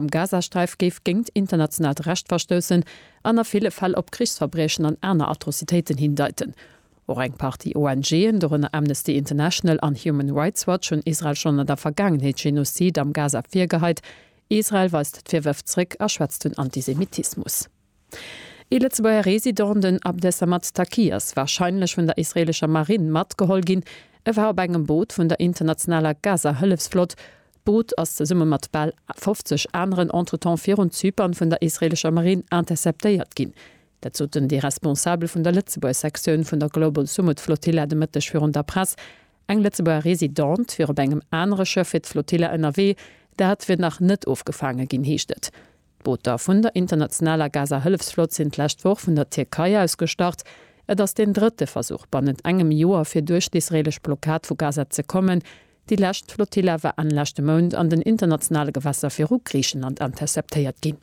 am Gazasträif géif géingt internationaalt Recht verstoussen an a ville Fäll op Krichsverbriechen an aner Atrocitéiten hindeiten. Och eng Partie ONGen, dorënner Amnesty International an Human Rights Watch, hunn Israel schonn an der Vergaangenheet Genozid am Gaza virgeheit. Israel weist d'Virwërf zréck a schwätzt vun Antisemitismus. Ee Lëtzebuerger Resident, den Abdesamad Taqi, ass warscheinlech vun der israeelescher Marinn matgeholl ginn. E war op engem Boot vun der internationaler Gaza-Hëllefsflott. D'Boot ass zesumme mat bal 50 aneren entretemps virun Zypern vun der israeelescher Marinn interceptéiert ginn. Dat soten déi Responsabel vun der Lëtzebuerg-Sektioun vun der Global Sumud Flotilla de Mëtteg virun der Press. Eng Lëtzebuerger Residente wier op engem anere Schëff fir d'Flotilla ënnerwee. Dat wier nach net ofgefaange ginn, heescht et. D'Booter vun der internationaler Gaza-Hëllefsflott sinn d'lescht Woch vun der Tierkei aus gestart. Et ass deen drëtte Versuch bannent engem Joer, fir duerch d'israeelesch Blockad vu Gaza ze kommen. Déi lescht Flotilla war Enn leschte Mount an den internationale Gewässer viru Griichenland interceptéiert ginn.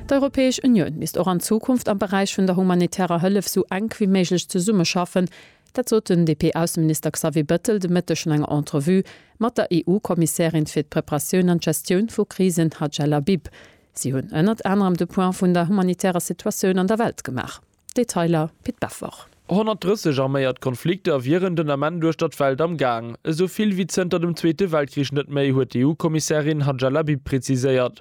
D'Europäesch Unioun misst och an Zukunft am Beräich vun der humanitärer Hëllef sou enk wéi méiglech zesummeschaffen, Dat sot den DP-Ausseminister Xavier Bettel de Mëtteg an enger Entrevue mat der EU-Kommissärin fir d'Preparatioun an d'Gestioun vu Krisen Hadja Labib. Si hunn ënnert anerem de Point vun der humanitärer Situatioun an der Welt gemaach. Detailer, Pit Beffort. 130 arméiert Konflikter wieren den Ament uechter d'Welt am Gaang. Esou vill wéi zënter dem Zweete Weltkrich net méi, huet d'EU-Kommissärin Hadja Labib preziséiert.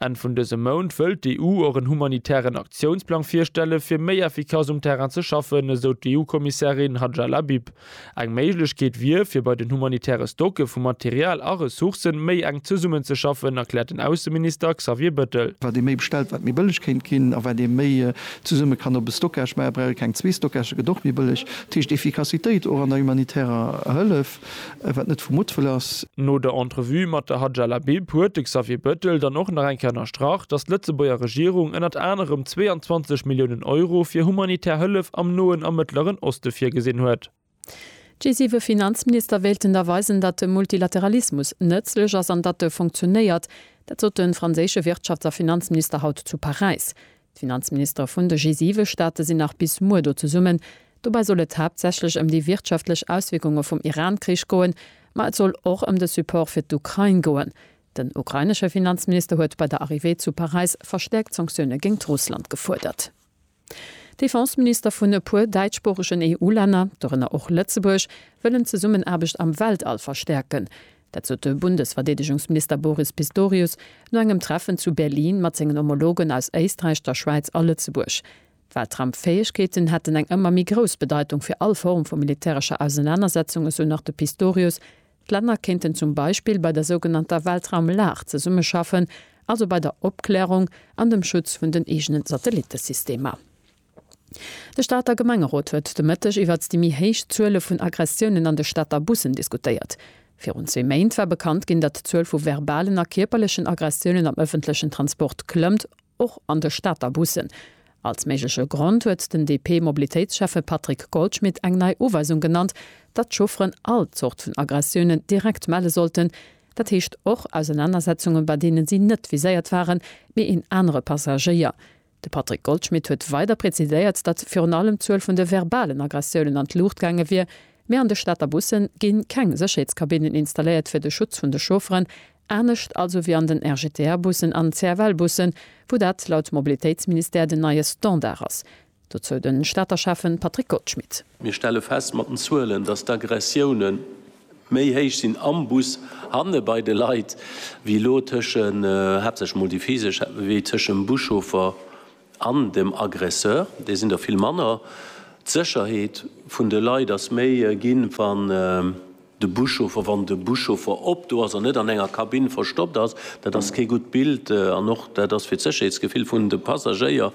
Enn vun dësem Mount wëllt d'EU och en humanitären Aktiounsplang virstellen, fir méi effikass um Terrain ze schaffen, esou d'EU-Kommissärin Hadja Labib. Eng Méiglechkeet wier, fir bei den humanitäre Stocke vu Material a Ressourcen méi enk zesummenzeschaffen, erkläert den Ausseminister Xavier Bettel. Wat ee méi bestellt, wat méi bëlleg kéint ginn. A wat ee méi zesumme kann op e Stockage maachen, brauch ee keng zwee Stockage, se gëtt och méi bëlleg. Dat heescht Effikassitéit och an der humanitärer Hëllef. Wat net vu Muttwëll ass. No der Entrevue mat der Hadja Labib huet de Xavier Bettel dann och nach eng Kéier ënnerstrach, datt d'Lëtzebuerger Regierung ënnert anerem 22 Milliounen Euro fir humanitär Hëllef am Noen a Mëttleren Oste virgesinn huet. G7 Finanzminister wéilten da weisen, datt de Multilateralismus nëtzlech ass an datt e funktionéiert. Dat sot de franséische Wirtschafts a Finanzminister haut zu Paräis. D'Finanzministere vun de G7-Staate sinn nach bis muer do zesummen. Dobäi soll et haaptsächlech ëm déi wirtschaftlech Auswierkunge vum Iran-Krich goen, ma et soll och ëm de Support fir d'Ukrain goen. Den ukrainesche Finanzminister huet bei der Arrivée zu Paräis verstäerkt Sanktioune géingt Russland gefuerdert. Defenseminister vun e puer däitschsproochegen EU-Länner, dorënner och Lëtzebuerg, wëllen d'Zesummenaarbecht am Weltall verstäerken. Dat sot de Bundesverdeedegungsminister Boris Pistorius no engem Treffen zu Berlin mat sengen Homologen aus Éisträich, der Schwäiz a Lëtzebuerg. D'Weltraumfäegkeeten hätten eng ëmmer méi grouss Bedeitung fir all Form vu militärescher Ausenanersetzung, esou nach de Pistorius. D'Länner kéinten zum Beispill bei der sougenannter Weltraumlag zesummeschaffen, also bei der Opklärung an dem Schutz vun den eegene Satellittesystemer. De Stater Gemengerot huet de Mëtteg iwwert déi méi héich Zuele vun Aggressiounen an de Stater Bussen diskutéiert. Virun zwee Méint war bekannt ginn, datt d'Zuel vu verbalen a kierperlechen Aggressiounen am ëffentlechen Transport klëmmt, och an de Stater Bussen. Als méigleche Grond huet den DP-Mobilitéitsschäffe Patrick Goldschmidt eng nei Uweisung genannt, datt d'Chaufferen all Zort vun Aggressiounen direkt melle sollten, dat heescht och Ausenanersetzungen, bei deene si net viséiert waren, mee een anere Passagéier. De Patrick Goldschmidt huet weider präziséiert, datt virun allem d'Zuel vun de verbalen Aggressiounen an d'Luucht gaange wier, mee an de Stater Busse gi keng Sécherheetskabinnen installéiert fir de Schutz vun de Chaufferen, anescht also wéi an den RGTR-Bussen an CFL-Bussen, wou dat laut Mobilitéitsministère den neie Standard ass. Dozou de Stater Schäffe Patrick Goldschmidt. Mir stelle fest mat den Zuelen, datt d'Aggressiounen Méi héich sinn am Bus hanne bei de Leit wéi elo tëschen, haaptsächlech mol déi physesch, wéi tëschent dem Buschauffer an dem Aggresseur. Déi sinn der vill manner. D'Sécherheet vun de Leit ass méi ginn, wann de Buschauffer, wann de Buschauffer op do ass an net an enger Kabinn verstoppt ass. Dat ass kee gutt Bild an och dat ass fir d'Sécherheetsgefill vun de Passagéier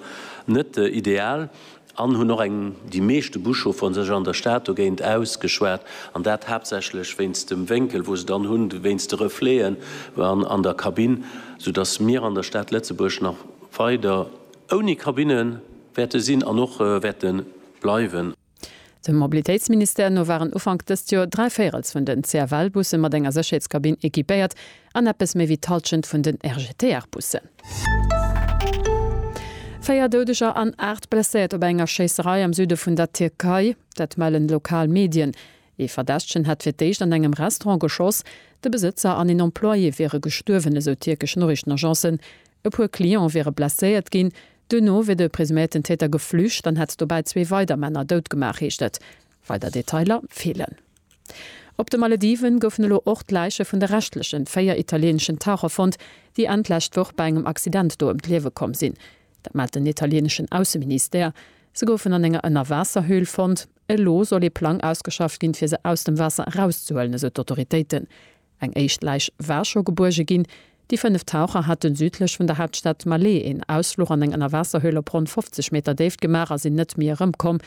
net ideal. an hunn och eng, déi meeschte Buschaufferen sech an der Stad dogéint ausgeschwat, an dat haaptsächlech wéinst dem Wénkel, wou se dann hunn, wéinst de Refleten an der Kabinn, soudass mir an der Stad Lëtzebuerg nach weider ouni Kabinne wäerte sinn an och wäerte bleiwen. Dem Mobilitéitsministère no waren Ufank dëst Joer dräi Véirels vun den CFL-Busse mat enger Sécherheetskabinn equipéiert, An eppes méi wéi d'Hallschent vun den RGTR-Bussen. Véier Doudeger an aacht Blesséiert op enger Schéisserei am Süde vun der Tierkei. Dat mellen lokal Medien. Ee Verdächtegen hätt fir d'éischt an engem Restaurant geschoss. De Besëtzer an een Employé wiere gestuerwen, esou tierkesch Noriichtenagencen. E puer Cliente wiere blesséiert ginn. Duerno wier de presuméierten Täter geflücht an hätt dobäi zwee weider Männer dout gemaach, heescht et. Weider Detailer feelen. Op de Malediven goufen elo och d'Läiche vun de reschtlechen véier italieeneschen Taucher fonnt, déi Enn d'lescht Woch bei engem Accident do ëm d'Liewe komm sinn. Dat mellt den italieeneschen Ausseministère. Se goufen an enger Ënnerwaasserhöhl fonnt. Elo soll ee Plang ausgeschafft ginn, fir se aus dem Waasser erauszehuelen, esou d'Autoritéiten. Eng éischt Läich war scho gebuerge ginn. Déi fënnef Taucher haten südlech vun der Haaptstad Malé een Ausfluch an eng Ënnerwaasserhöhl op ronn 50 Meter Déift gemaach a sinn net méi erëmkomm.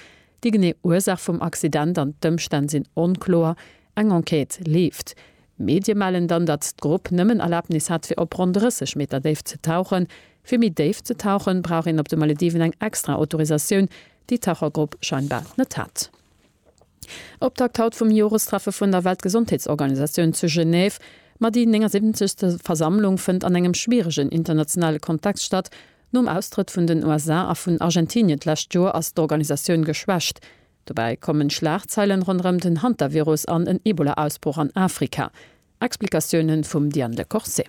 Déi genee Ursaach vum Accident an d'Ëmstänn sinn onkloer. Eng Enquête leeft. Medie mellen dann, datt d'Grupp nëmmen Erlabnis hat fir op ronn 30 Meter Déift ze tauchen. Fir méi déif ze tauchen, brauch een op de Malediven eng extra Autorisatioun, déi d'Tauchergrupp scheinbar net hat. Optakt haut vum Jorestreffe vun der Weltgesondheetsorganisatioun zu Genève. Ma déi 79. Versammlung fënnt an engem schwieregen internationale Kontext statt. Nom Austrëtt vun den USA a vun Argentinien d'lescht Joer ass d'Organisatioun geschwächt. Dobäi kommen Schlagzeilen ronderëm den Hantavirus an en Ebola-Ausbroch an Afrika. Explikatioune vum Diane Lecorse.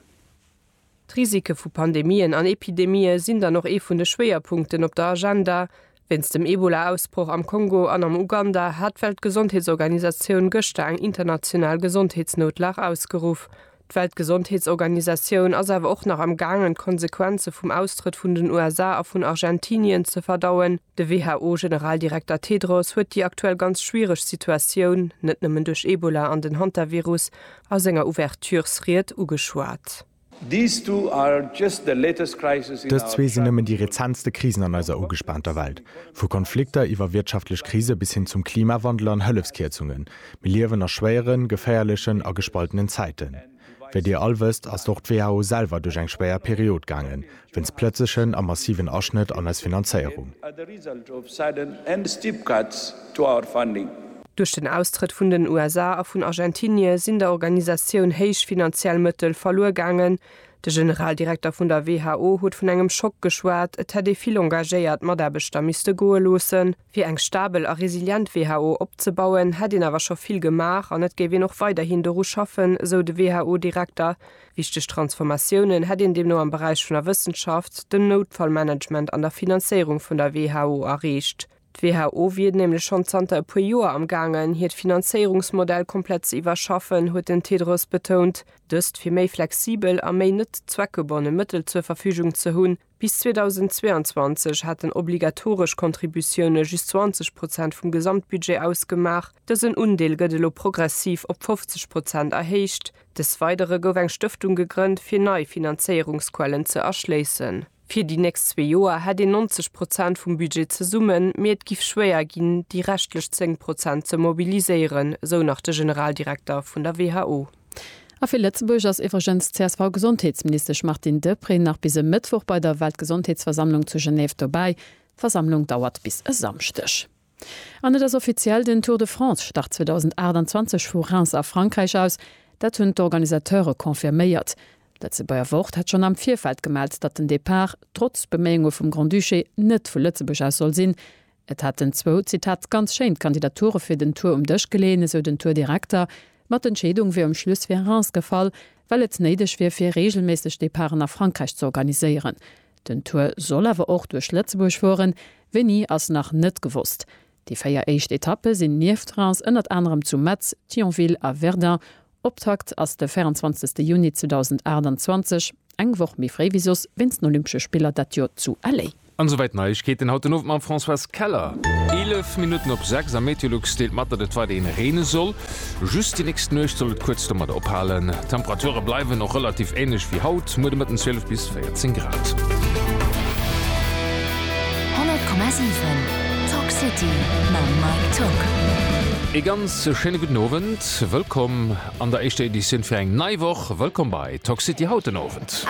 D'Risike vu Pandemien an Epidemië sinn dann och ee vun de Schwéierpunkten op der Agenda. Wéinst dem Ebola-Ausbroch am Kongo an am Uganda hat d'Weltgesondheetsorganisatioun gëschter eng international Gesondheetsnoutlag ausgeruff. D'Weltgesondheetsorganisatioun ass awer och nach am gaangen d'Konsequenze vum Austrëtt vun den USA a vun Argentinien ze verdauen. De WHO-Generaldirekter Tedros huet déi aktuell ganz schwiereg Situatioun, net nëmmen duerch Ebola an den Hantavirus, a senger Ouverturesried ugeschwat. Dës zwee sinn nëmmen déi rezentste Krisen an eiser ugespaanter Welt. Vu Konflikter iwwer wirtschaftlech Krise bis hin zum Klimawandel an Hëllefskierzungen, mir liewen a schwéieren, geféierlechen a gespaltenen Zäiten. Wéi Dir all wësst, ass och d'WHO selwer duerch eng schwéier Period gaangen, wéinst plëtzlechen a massiven Aschnëtt an eis Finanzéierung. Duerch den Austrëtt vun den USA a vun Argentinie sinn der Organisatioun héich finanziell Mëttel verluer gaangen. De Generaldirekter vun der WHO huet vun engem Schock geschwat, et hätt ee vill engagéiert Mataarbechter misste goe loossen. Fir eng stabel a resilient WHO opzebauen, hätt een awer scho vill gemaach an et géif een och weiderhin doru schaffen, esou de WHO-Direkter. Wichteg Transformatiounen hätt een deemno am Beräich vun der Wëssenschaft, dem Noutfallmanagement an der Finanzéierung vun der WHO erreecht. D'WHO wier nämlech schonn zanter e puer Joer am gaangen, hiert Finanzéierungsmodell komplett ze iwwerschaffen, huet den Tedros betount. Dëst, fir méi flexibel a méi net zweckgebonne Mëttel zur Verfügung ze hunn. Bis 2022 haten obligatoresch Contributioune just 20 Prozent vum Gesamtbudget ausgemaach. Dësen Undeel gëtt elo progressiv op 50 Prozent erhéicht. Des Weidere gouf eng Stëftung gegrënnt, fir nei Finanzéierungsquellen ze erschléissen. Fir déi nächst zwee Joer hätt een 90 Prozent vum Budget zesummen, mee et giff schwéier ginn, déi reschtlech 10 Prozent ze mobiliséieren, sou nach de Generaldirekter vun der who. A fir Lëtzebuerg ass iwwregens d'CSV-Gesondheetsministesch Martine Deprez nach bis e Mëttwoch bei der Weltgesondheetsversammlung zu Genève dobäi. D'Versammlung dauert bis e Samschdeg. An et ass offiziell, den Tour de France start 2028 vu Reims a Frankräich aus. Dat hunn d'Organisateure confirméiert. D'Lëtzebuerger Wort hat schonn am Virfeld gemellt, datt den Depart, trotz Beméiunge vum Grand-Duché, net vu Lëtzebuerg aus soll sinn. Et hätten zwou, Zitat, ganz schéin d'Kandidature fir den Tour um Dësch geleeën, esou den Tour-Direkter, ma d'Entscheedung wier um Schluss fir Reims gefall, well et néideg wier fir reegelméisseg Departen a Frankräich ze organiséieren. Den Tour soll awer och duerch Lëtzebuerg fueren, wéini ass nach net gewosst. Déi véier éischt Etappe sinn nieft Reims ënnert anerem zu Metz, Thionville a Verdun Optakt ass de 24 Juni 2028, eng Woch méi fréi wéi soss, wéinst den Olympesche Spiller dat Joer zu LA. An esouwäit Neiegkeeten haut den Owend mam Françoise Keller. 11 Minutten op 6 a Meteolux deelt mat, datt et weiderhin reene soll. Just déi nächst Nuecht soll et kuerz domat ophalen. D'Temperature bleiwen och relativ änlech wéi haut, muer de Mëtten 12 bis 14 Grad. 100,7 Talk City mam Mike Tück. Ee ganz schéine gudden Owend. Wëllkomm an der éischter Editioun fir eng nei Woch. Wëllkomm bei Talk City haut den Owend.